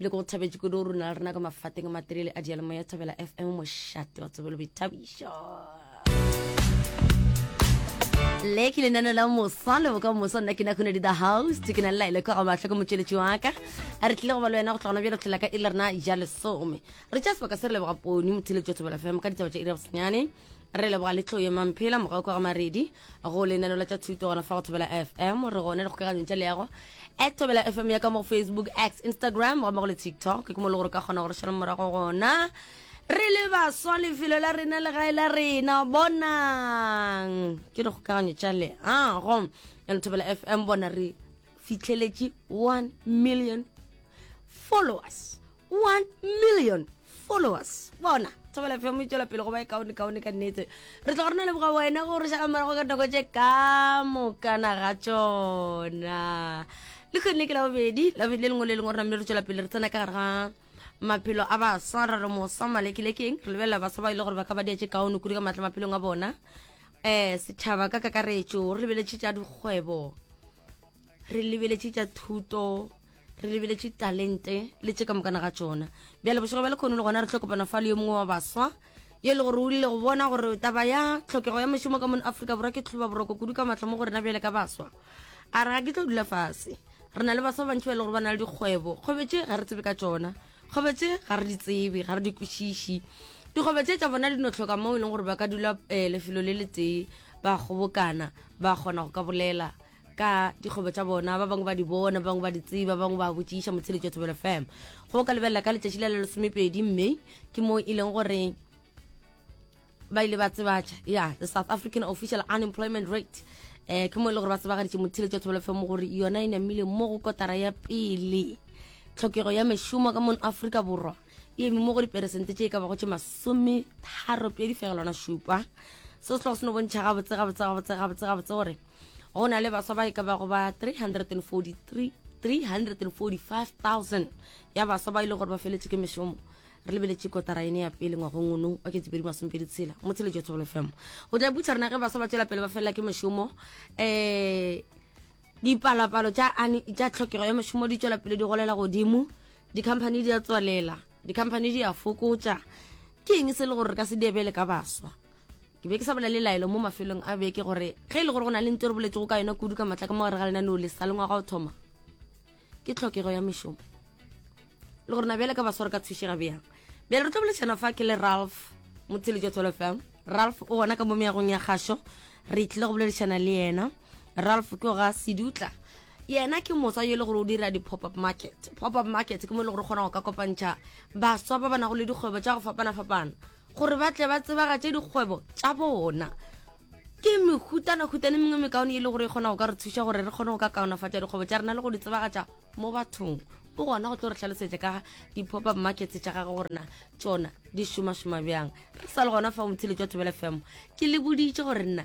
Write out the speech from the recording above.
le go thabetše kudu rona le rena ka mafateng a materele a dialemo ya thabela fm mošate wa tsebelo boithabišo le ke lenano la mosa le boka mosa nna ke na khone di the house ke na laile kwa ga matlho ke motšweletši wa ka a re tlile go ba le wena go tlogona bjalo tlhela ka e le rena ja lesome re tša sebaka se re leboga poni motheletši wa thobela fm ka ditaba tša ira bosenyane re leboga le tlo ye mamphela morago kwa ga maredi go lenano la tša thuto gona fa go thobela fm re gone le kgokaganyong tša leago at thobela fm ya ka mo facebook x instagram gomme go le tiktok ke mo le gore ka kgona gore šala morago gona re le baswa lefelo la rena le gae la rena bonang ke re kgokaganyo tša leago ya lethobela fm bona re fitlheletše 1 million followers 1 million followers bona thobela fm e tswela pele go ba e kaone kaone ka nnete re tla go rena leboga wena go re šala morago ka dinako tše ka mokana ga tsona le kgonne ke labobedi labobedi le lengwe le lengwe re namile re tswela pele re tsena ka gare ga maphelo a baswa ra re mosa malekilekeng re lebelela baswa ba e le gore ba ka ba diatše kaone kudu ka maatla maphelong a bona um setšhaba ka kakaretšo re lebeletše tša dikgwebo re lebeletše tša thuto re lebeletše talente le tše ka mokana ga tšona bjale bošego bja lekgono le gona re tlo kopana fa le yo mongwe wa baswa yo e le gore o rile go bona gore taba ya tlhokego ya mošomo ka mono aforika borwa ke tlhoba boroko kudu ka matlho mo go rena bjale ka baswa a re ga ke tlo dula fase re na le baswa bantši ba e le gore ba na le dikgwebo kgobetse ga re tsebe ka tsona kgobetse ga re di tsebe ga re di kwešiši dikgobe tse tsa bona di no tlhoka mo e leng gore ba ka dula um lefelo le le tee ba kgobokana ba kgona go ka bolela ka dikgwebo tša bona ba bangwe ba di bona ba bangwe ba di tseba ba bangwe ba botšiša motsheletšo thobelo fm go ka lebelela ka letšatši la la lesomepedi mme ke moo e leng gore ba ile ba tsebatša ya the south african official unemployment rate um ke mo e le gore ba tsebagaditše motsheletšo thobelo fm gore yona e namile mo go kotara ya pele tlhokego ya mešomo ka mono aforika borwa e eme mo go diperesente tše e ka bago tše masome tharo pedi fegelwana šupa seo se tlogo se no bontšha gabotse gabotse gabotse gabotse gabotse gore go na le baswa ba e ka bago ba 345,000 ya baswa ba ile gore ba feletse ke mešomo re lebeletše kotara ene ya pele ngwagong ono wa ketsepedi masompedi tshela mo tshele jo thobolo fm go tla butsa rena ge baswa ba tswela pele ba felela ke mešomo um eh, dipalopalo tša tlhokego ya mešomo di tswela pele di golela godimo dikhamphani di a tswalela dikhamphani di a fokotša ke eng se le gore re ka se diebele ka baswa ke be ke sa bolele laelo mo mafelong a beke gore ge e le gore go na le nto re boletsego ka yona kudu ka matla ka mo gare ga lenaneo le sa lengwaga o thoma ke tlhokego ya mešomo le gore na bjale ka basware ka thušega bjang bjale re tlo bolešana fa ke le ralph motshele jwa tswelo fm ralph o gona ka mo meagong ya kgašo re tlile go boledišana le yena ralph ke ga sedutla yena ke moswa yo e le gore o dira di-pop-up market pop-up market ke mo e le gore kgona go ka kopantšha baswa ba ba nago le dikgwebo tša go fapana-fapana gore ba tle ba tsebagatše dikgwebo tša bona ke mehutana-hutane mengwe mekaone e le gore e kgona go ka re thuša gore re kgone go ka kaonafatša dikgwebo tša rena le go di tsebagatša mo bathong o gona go tlo re tlhalosetša ka di-pop-up markets tša gage gore na tsona di šomašoma bjang re sa le gona fa o motshile jwa thobela fm ke le boditše gore nna